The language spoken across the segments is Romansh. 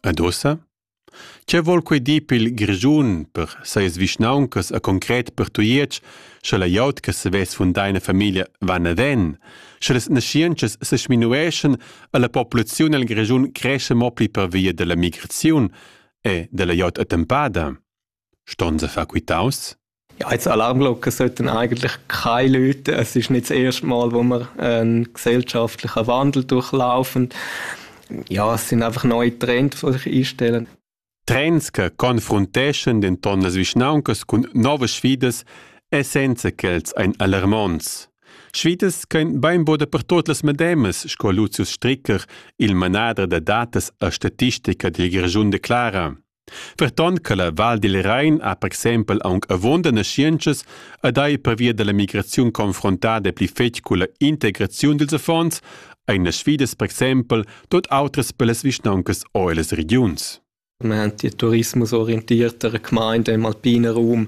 Ed ussa? Che vol quei dir pil Grischun per seis vischnauncas e concret per Tujetsch, sche la glieud che savess fundar ina famiglia va naven, sche las naschientschas se sminueschan e la populaziun el Grischun cresce mo pli per via della migraziun e della glieud attempada? Ston se far quitaus? Ja, jetzt Alarmglocken sollten eigentlich keine Leute. Es ist nicht das erste Mal, wo wir einen gesellschaftlichen Wandel durchlaufen. Ja, es sind einfach neue Trends, die sich einstellen. Trends che confronteschan denton las vischnauncas cun novas sfidas e senza ch'els ein alarmonts. Sfidas ch'ein beinbod dapertot las medemas, sco Lucius Stricker, il manader da datas a statistica dil Grischun declara. Ferton che la Val dil Rein ha per exempel aunc avunda naschientschas ed ei pervia dalla migraziun confrontada pli fetg culla integraziun dils affons, ein las sfidas per exempel tut autras per las vischnauncas o ellas regiuns. Wir haben die tourismusorientiertere Gemeinde im alpinen Raum.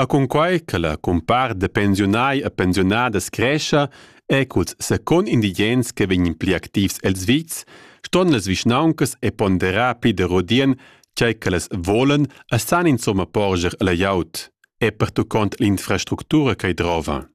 Er cunquai che la cumpart da pensiunai e pensiunadas crescha e culs secund indigens che vegnan pli activs els vits, ston las vischnauncas e ponderar pli da rodien tgei ch'ellas volan e san insomma porscher alla glieud e pertuccont l'infrastructura ch'ei drova.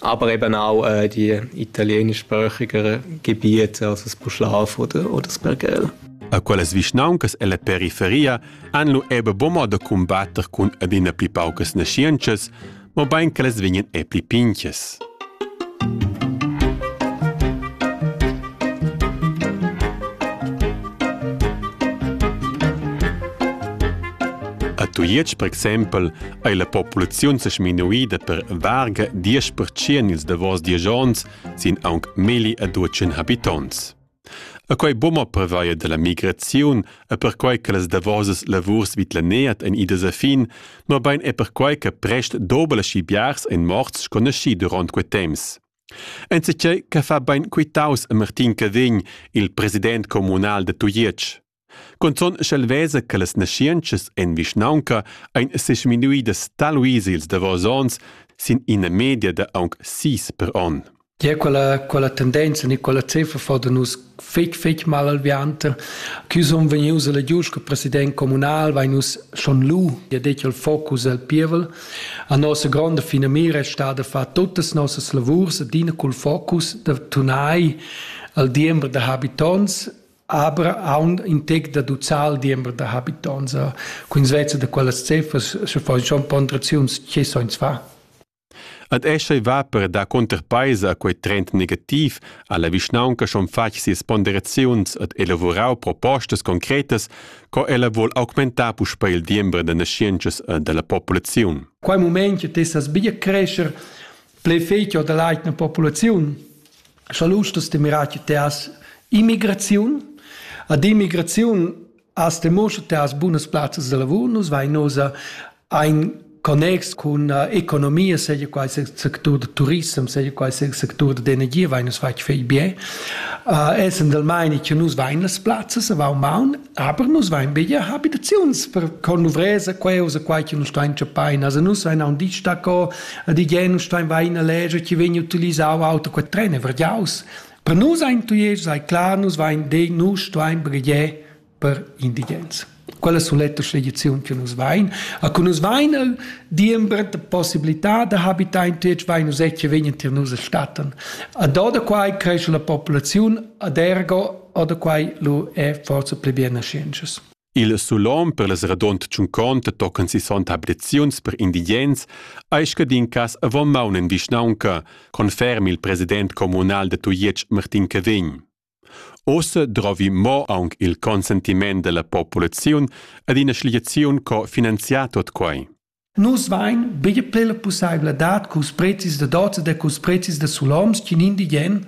Aber eben auch äh, die italienischsprachiger Gebiete, also das Puschlav oder, oder das Pergel. A quellas vischnauncas ella periferia han lu ebe buca da cumbatter cun adina pli paucas naschientschas, mobein che las vegnan e pli pinchas. A Tujetsch, per exempel, ei la populaziun sa sminuida per varga 10% ils davos diesch onns sin aunc milli e duecin habitonts. A quei bumma prevaia della migraziun e perquai che las davosas lavurs vid la neat ein idas a fin, mobein è perquai che prest dobel aschi biars ein morts sco naschi durant quei temps. Enzatgei che fa bein quitaus a Martin Cavegn, il president communal de Tujetsch. Cunzun sch'el vesa che las naschientschas en vischnaunca ein sesminuidas taluis ils davos onns sin ina media da aunc sis per onn. Gia quella, quella tendenza ni quella cifra fa da nus fetg fetg mal alviante. Chi sun vegnius alla giust che president comunal vai nus schon lu, ja detg il focus al pievel. A nossa gronda fina mira è stata far tutas nossas lavurs, adina col focus da tunai al diember da habitants aber aund in tec da ducal diember da habitonts cun svezza da quellas ceffas sche fa schon ponderaziuns che soins fa Ad esce va per da conterpaisa quei trend negativ alla vischnaunca schon fatg sias ponderaziuns ad elavorau propostas concretas co ella vuol augmentar puspei il diember da nascientschas e dalla populaziun. Quei moment che tessas bia crescer ple fetg da l'eigna populaziun, scha lustas de mirar te as immigraziun, ad immigraziun as te moscha te as bunas plazzas de lavur, nus vai nosa ein connex con uh, economia, seja qual sia sector de turism, seja qual sia sector de energia, vai nus fai fei bien. Uh, essend del meine che nus vain las plazzas a Vaumbaun, Aber nus vein bia habitaziuns per conluvresa, queusa, quai che nus stein chapain. Also nus vein aun dit stacco, a di gen nus stein vein a leger, ci vegn utilisau auto quel tren e vergiaus. Per nus ein tuies, sei klar, nus vein de nus stein bregie per indigens. Quella soletta sceglizione che nus vein. A cu nus vein el diember de possibilità de habitar in tuies, vein nus ecce vegn tier nus a statten. A do da quai cresce la popolazione ad ergo Oder quai lu è forse pli bienascienschas. Il sulom per las radont tschunconta tocan si son abreziuns per indigens ei scadin cas avon maun en vischnaunca, conferm il president communal de Tujetsch Martin Cavegn. Osse drovi mo aunc il consentiment della populaziun ad ina schliaziun co finanziar tot quai. Nus vain bger plü la pussaivladad culs prezis da dozas e culs prezis da suloms ch'in indigen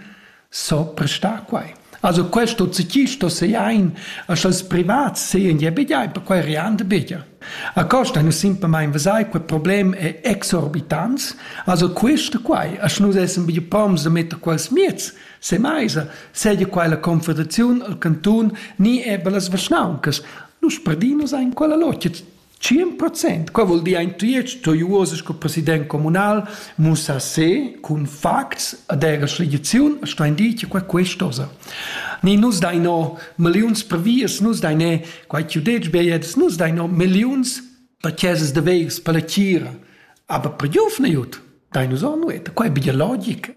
so prestar quai. Also questo chi sto seain a sch'als privats sean ja bgiai, perquai rian da bger. A costa nus simplamaing vesai, quel problem è exorbitants, also quista quai, a sch'nus essan bger proms da metter quels mieds se maisa, seia quai la Confederaziun, il cantun, ni eber las vischnauncas, nus perdin nus ain quella logia. Tschien procent, qua vuol dir ein tuiet to uoses sco president communal mussa se cun facts ad era schligiziun sto indit che qua questosa. Ni nus dai no milliuns per vias, nus dai ne quai chiu dec beiets, nus dai no milliuns per chesas de veis per la tira, aber per giuf ne jut, dai nus on nueta, qua è biologic.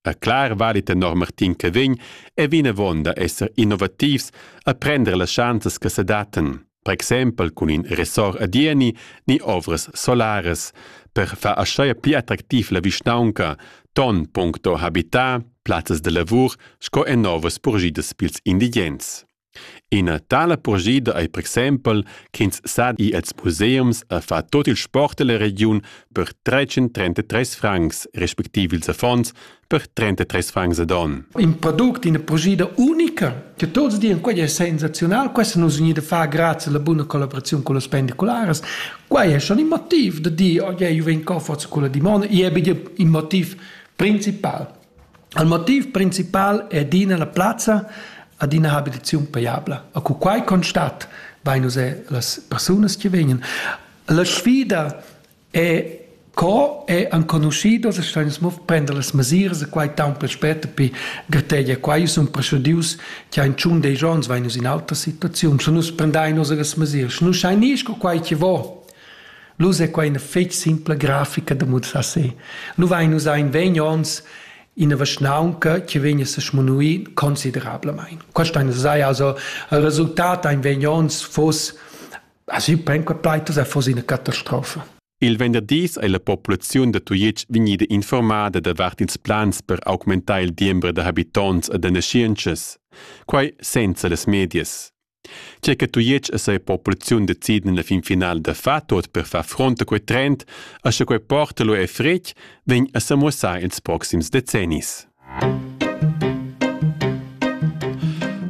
A clar vali tenor Martin Cavegn è vinavon da esser innovativs a prender las schanzas che sedattan, per exempel cun in ressort a Dieni ni ovras solaras, per far aschia pli attractiv la vischnaunca, ton puncto habitat, plazzas da lavur sco en novas purgidas pils indigens. Ina tala purschida ei per exempel ch'ins sa ir els museums a far tut il sport ella regiun per tretg en trentatres francs, respectiv ils affons per trentatres francs ad onn. In product, ina purschida unica che tuts dian quei è sensazional, questo nus vegnir da far grazie alla buna collaborazione con le pendicolares. Quei è schon il motiv da dir oh, yeah, io vengo forza con la dimona, e è il motiv principal. Il motiv principal è adina la plazza ad ina habilitaziun pajabla. E cu quai constat, vein nus er las persunas che vegnan. La sfida è co è enconuschidos e stein nus mo prender las mesiras e quai tant pli spert e pi gretegia quai sun procedius che ein tschun dei giorns vein nus in altra situaziun, sche nus prendein nus las mesiras, sche nus schein ir sco quai che vo, Nus è quai ina fetg simpla grafica da mussar se. Nu vain nus in vegn ons ina vaschnaunca che vegn a se smunuir considerablamain. Questo è sai also il resultat ein vegn ons fos also pen quei plaitus è fos ina catastrofa. Il venderdis è la populaziun da Tujetsch vegnida informada davart ils plans per augmentar il diembre da habitonts e da naschientschas. Quai senza las medias. Tge che Tujetsch e sia populaziun deciden en la fin finala da far tot per far front a quei trend e sche quei porta lu è fretg, vegn a semuossar ils proxims decennis.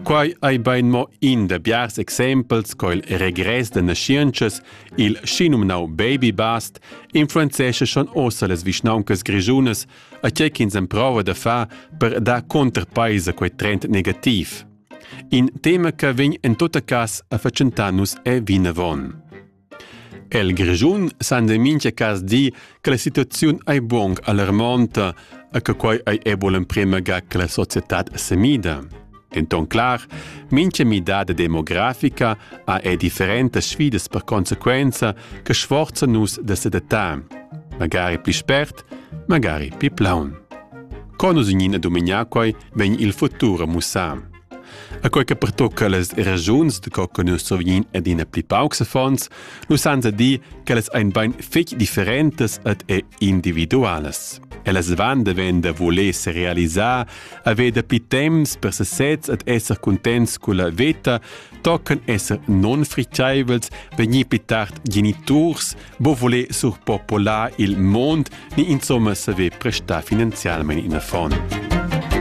Quai ei bein mo in da biars exempels co il regress da naschientschas, il schinumnau baby bust, influenzesce schon ossa las vischnauncas grischunas a tgei ch'ins emprova da far per dar contrapeis a quei trend negativ. In tema che vegn en tutta cas a fatschentar nus è vinavon. El Grischun san de mincha cas dir che la situaziun ei buong alarmonta e che quei ei ebo l'emprema ga che la società semida. En ton clar, mincha midada demografica ha è differenta sfidas per conseguenza che sforza nus da sedatar, magari pli spert, magari pli plaun. Con nus in ina dominar quei vegn il futur a mussar. A quei che pertocca las ragiuns de co che nus survegnin adina pli paucs fonds, nus san dir che las ein bein fetg differentas ed e individualas. Ellas van de ven da voler se realisar, haver dapi temps per sesez ed esser contents con la veta, tochen esser non fricciaivels, vegnir più tard geniturs, bo voler surpopolar il mond ni insomma saver prestar finanzialmente in fond.